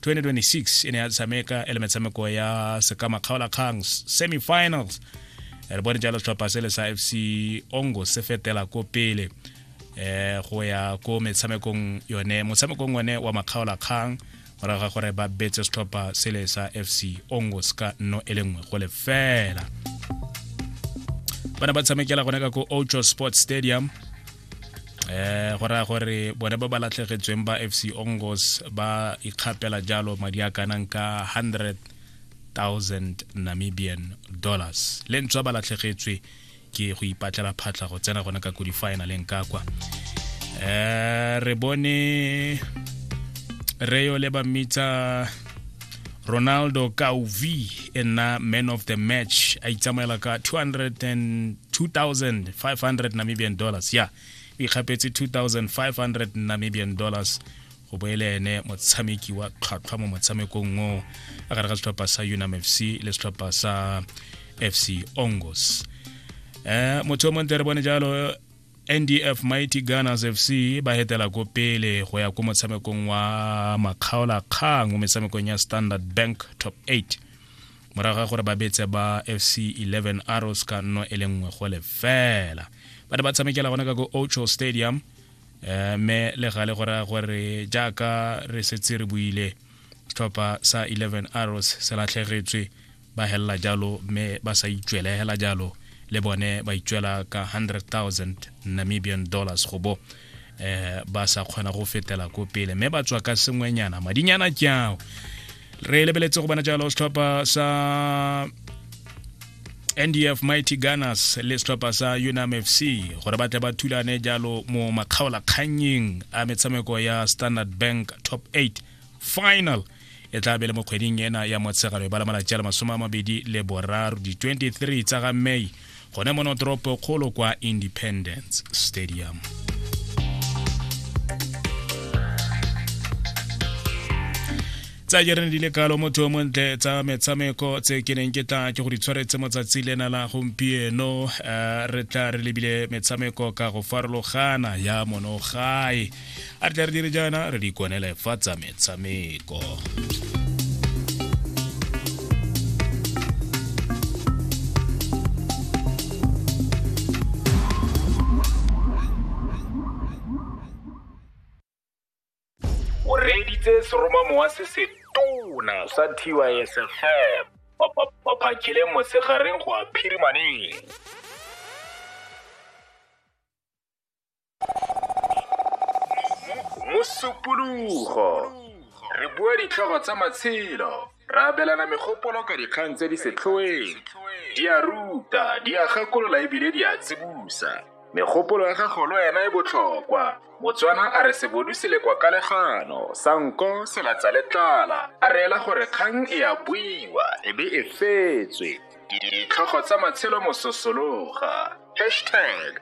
2026 e ne ya tshameka e le metshameko ya sekama kgaolakgang semifinals re bone jalo setlhopha se le sa fc ongo se fetela ko pele eh go ya ko metshamekong yone motshamekong one wa makgaolakgang morago ga gore ba betse setlhopha se le sa fc ongo se ka nno e le nngwe go lefela ba ne ba tshamekela gone ka ko ocho sports stadium eh go raya gore bone ba ba latlhegetsweng ba fc ongos ba ikgapela jalo madi a kanang ka 100,000 namibian dollars le ntswa ba latlhegetswe ke go ipatlela phatlha go tsena gona ka ko di-finaleng ka kwa um re bone reyo le ba mmitsa ronaldo kauvi e nna man of the match a itsamaela ka 202500 namibian dollars ya yeah. o ikgapetse 2500 namibian dollars go boele ene motshameki wa tlhwatlhwa mo motshamekong o a gare ga setlhopha sa unam fc le setlhopha sa fc ongos um motho o montle re bone jalo ndf mighty gunners fc ba hetela ko pele go ya ko motshamekong wa makgaolakgang mo metshamekong ya standard bank top 8 morago ga gore ba betse ba fc 11 arrows ka nno e le nngwe go lefela ba ne ba tshamekela gona ka ko ocho stadium um me le gale go raya gore jaaka re setse re buile tlhopha sa 11 arrows se latlhegetswe ba helela jalo mme ba sa itswele hela jalo le bone ba itswela ka 100,000 Namibian dollars go bo eh ba sa kgona go fetela ko pele mme ba tswa ka sengwenyana madinyana ke ao re lebeletse go bona jalo setlhopha sa ndf mighty gunners le setlhopha sa unam fc gore ba tle ba thulane jalo mo makgaolakgannyeng a metshameko ya standard bank top 8 final e tla be le mo kgweding ena ya motshegalo e bala malatsi a le masome a mabedi le boraro di-23 tsa ga may gone mo notoropo kgolo kwa independence stadium tsa jerene di le kalo motho yo montle tsa metshameko tse ke neng ke tla ke go di tshwaretse motsatsi lena la gompieno eh, re tla re lebile metshameko ka go farologana ya monogae a re tla re dire jaana re di kwanele fa tsa metshameko o reeditse seromamowa se se tona sa tysfm o phakile mosegareng go a phirimaneng mosupologo re bua ditlhogo tsa matshelo ra abelana megopolo ka dikgang tse di setlhoeng di a ruta di a gakolola ebile di a tsibusa megopolo ya gago le wena e botlhokwa motswana a re sebodu se le kwa kalegano sa nko se latsa le tlala a reela gore kgang e a buiwa e be e fetswe ditlhogo tsa matshelo mososologa hashtag